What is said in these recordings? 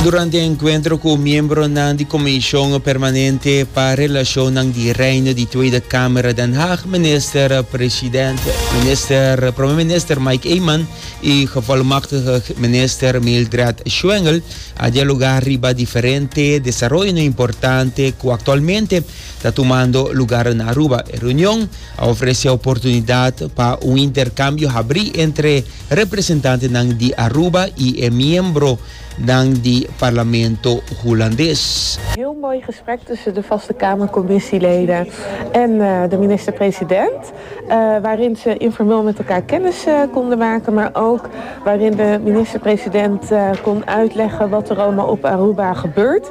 Durante e enkuentro ku miembronan di Komishon Permanente pa Relashonnan di Reino di Tweede Kamer Den Haag, Minister President Minister Prome Minister Mike Eman i Gevolmagtige Minister Mildred Schwengel a dialoga riba diferente desaroyonan importante ku aktualmente ta tumando lugar na Aruba. E reunion a ofrece oportunidad pa un intercambio habrí entre representantenan di Aruba y e miembronan di Parlamento Hulandes. Heel mooi gesprek tussen de Vaste Kamercommissieleden en de minister-president, waarin ze informeel met elkaar kennis konden maken, maar ook waarin de minister-president kon uitleggen wat er allemaal op Aruba gebeurt.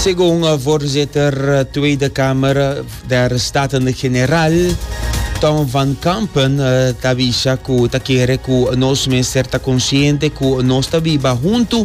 Segun voorzitter Tweede Kamer der Staten-General Tom van Kampen ta bisa ku ta kere ku nos mester ta konsiente ku nos ta biba huntu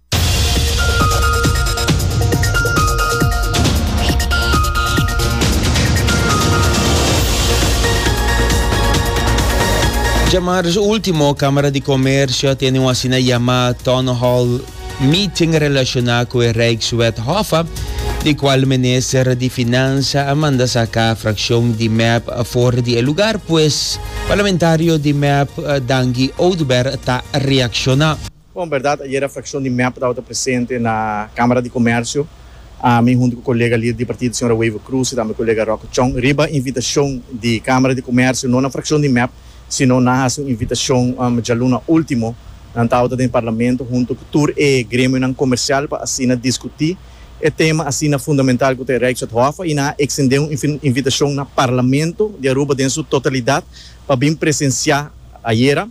Dje marz último, Kámara di Komersio a tene un asina yamá Town Hall Meeting relashoná ku e Rijkswet Hoffa, di kual Minister di Finansa a manda saká frakshon di mep for di e lugar, pues parlamentario di mep Dangi Oduber ta reakshoná. Bon, berdad ayera fraccion di mep tabata presente na Camara di Comercio, ami hunto cu colega lider di partido señora Wever Cruz y tambe colega Rocco Chong, riba invitacion di Camara di Comercio, no na fraccion di mep, sino nan haci un invitacion djaluna ultimo, nan tabata den Parlamento hunto cu tur e gremionan comercial pa asina discuti e tema asina fundamental cu ta e Rijkswetthof y nan a extende un invitacion na Parlamento di Aruba den su totalidad pa bin presencia ayera.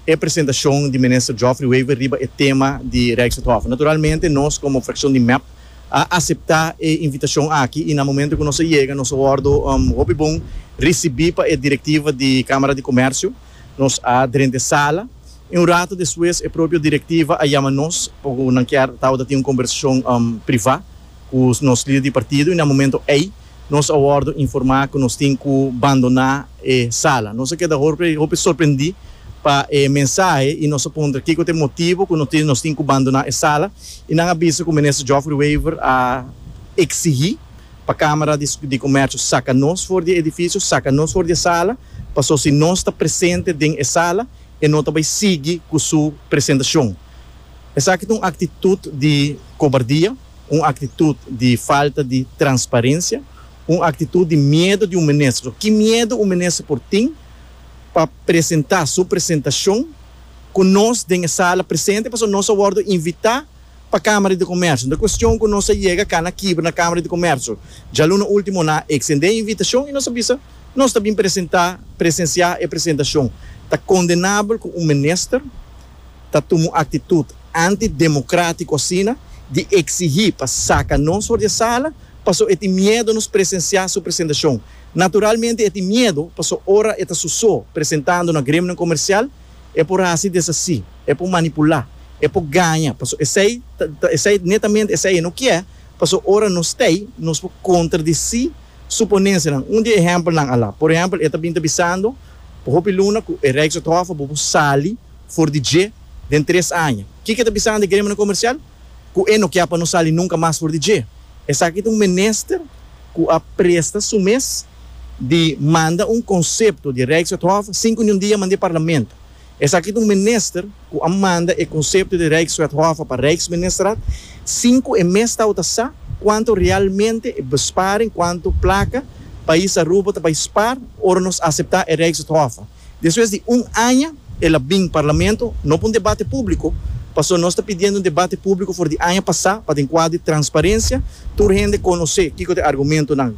e presentacion di Minister Geoffrey Wever riba e tema di Rijkswethof. Naturalmente nos como fraccion di mep a acepta e invitacion aki y na momento cu nos a yega nos a wordo hopi bon ricibi pa e directiva di Camara di Comercio. Nos a drente sala y un rato despues e propio directiva a yama nos pa cu nan kier tabata tin un conversacion priva cu nos lider di partido y na momento ey Nos a wòrdu informá ku nos tin ku bandoná e sala. Nos a keda hopi sorprendí pa e mensahe i nos a puntra kiko ta e motibu ku nos tin ku bandoná e sala i nan a bisa ku Minister Geoffrey Wever a eksigí pa Kámara di Komèrshio saka nos for di e edifisio, saka nos for di e sala paso si nos ta presente den e sala e no ta bai sigui ku su presentashon. Esaki ta un aktitut di kobardia. un aktitut di falta di transparensia, un aktitut di miedu di un minister. So ki miedu un minister por tin pa presenta su presentashon ku nos den e sala presente pasobra nos a wòrdu invitá pa Kámara di Komersio. Nan kuestion ku nos a yega kana kibra na Kámara di Komersio. Djaluna último nan a eksendé e invitashon i nos a bisa nos ta bin presentá, presensiá e presentashon. Ta kondenabel ku un minister ta tuma un aktitut antidemokrátiku asina di eksigí pa saka nos for di e sala paso e tin miedo nos presensiá su presentashon. Naturalmente e tin miedo paso ora e ta su so presentando na gremionan komersial e por hasi desasí, e por manipulá, e por gaña paso esei ta esei netamente esei e no kier paso ora nos t'ei nos por kontradisí su ponensianan. Un di e ehèmpelnan a la por ehèmpel e ta bin ta bisando. Por hopi luna cu e Rijks atrofa bo por sali for di dje den tres aña. Kiko e ta bisa nan di Gremionan Comercial? Cu e no kia pa nos sali nunca mas for di dje. Esaki ta un minister cu a presta su mes di manda un concepto di Rijks atrofa sin cu niun dia a manda e Parlamento. Esaki ta un minister ku a manda e konsepto di Rijkswethof pa Rijksministerraad sin ku e mes tau ta sa kuantu realmente e besparing, kuantu plaka pais Aruba ta bai spaar ora nos aseptá e Rijkswethof. Despues di un aña el a bin Parlamento, no pa un debate públiko, pasobra nos ta pidiendo un debate públiko for di aña pasá pa den kuadro di transparencia tur hende konosé kiko ta e argumentonan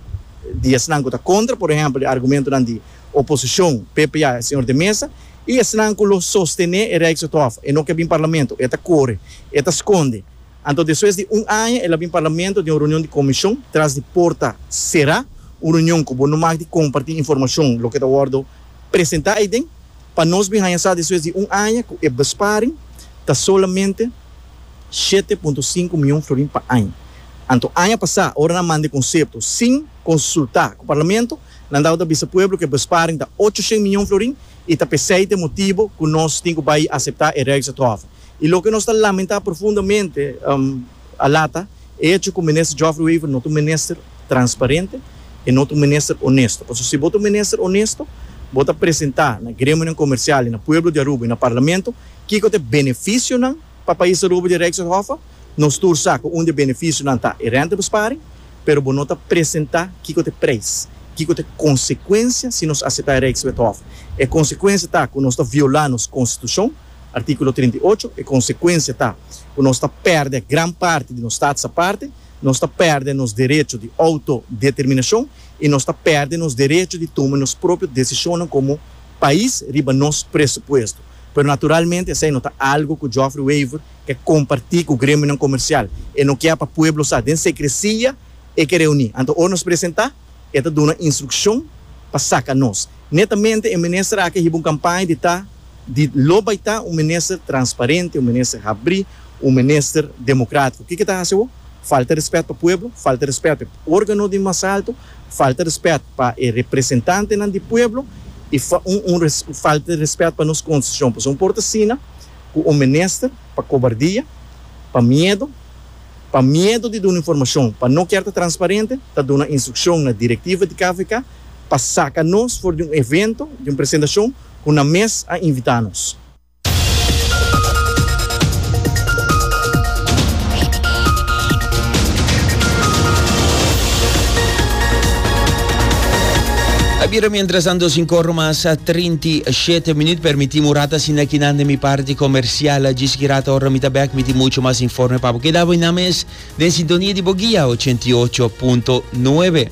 di esnan ku ta kontra, por ehèmpel e argumentonan di Oposicion, PP a e señor de mesa y esnan cu lo sostene e Rijkswethof. E no ke bin Parlamento. E ta core. E ta sconde. Anto despues di un aña el a bin Parlamento den un reunion di Comision tras di porta cera, un reunion cu bo no mag di comparti informacion loke ta wordo presenta ey den. Pa nos bin haña sa despues di un aña cu e besparing ta solamente shete punto sinku miyon florin pa aña. Anto aña pasa ora nan manda e concepto sin consulta cu Parlamento, Landau ta bisa pueblo ku e besparing ta ochociènt miñon florin i ta p'esei ta e motibu ku nos tin ku bai aseptá e Rijksatrofe. I loke nos ta lamentá profundamente a lata, e echo ku Minister Geoffrey Wever no ta un minister transparente, e no ta un minister onesto. Pasobra si bo ta un minister onesto, bo ta presentá na gremionan komersial i na pueblo di Aruba i na Parlamento kiko ta e benefisionan pa pais Aruba di e Rijksatrofe. Nos tur sa ku un di e benefisionan ta e rèntabesparing. pero bo no ta presentá kiko ta e preis, kiko ta e konsekuensia si nos aseptá e Rijkswethof. E konsekuensia ta ku nos ta violá nos konstitushon, artíkulo trinta i ocho, e konsekuensia ta ku nos ta pèrdè gran parti di nos stats aparte, nos ta pèrdè nos derecho di outodeterminashon i nos ta pèrdè nos derecho di tuma nos propio desishonnan komo pais riba nos presupuesto. Pero naturalmente esei no ta algu ku Geoffrey Wever E kompartí ku gremionan komersial. E no kia pa pueblo sa. Den sekresia e ke reuní. Anto ora nos presentá, e ta duna instrukshon pa saka nos. Netamente e minister aki a hiba un kampaña di ta di lo bai ta un minister transparente, un minister habrí, un minister demokratiko. Kiko e ta hasi awo? Falta rèspèt pa pueblo, falta rèspèt pa e órgano di mas alto, falta rèspèt pa e representantenan di pueblo i un un falta rèspèt pa nos konstiushon. Pasobra un por ta asina. ku un minister pa kobardia, pa miedu, pa miedu di duna informashon, pa no kier ta transparente, ta duna instrukshon na direktiva di KVK pa saka nos for di un evento di un presentashon ku nan mes a invitá nos. A bira mientras tanto sin corro mas. Ti e shete minut permiti mi ora ta asina aki nan den mi parti comercial. Djis ki rata ora mi ta bek mi tin mucho mas informe pa bo keda bo y nan mes den sintonia di bo guia ochenta i ocho punto nuebe.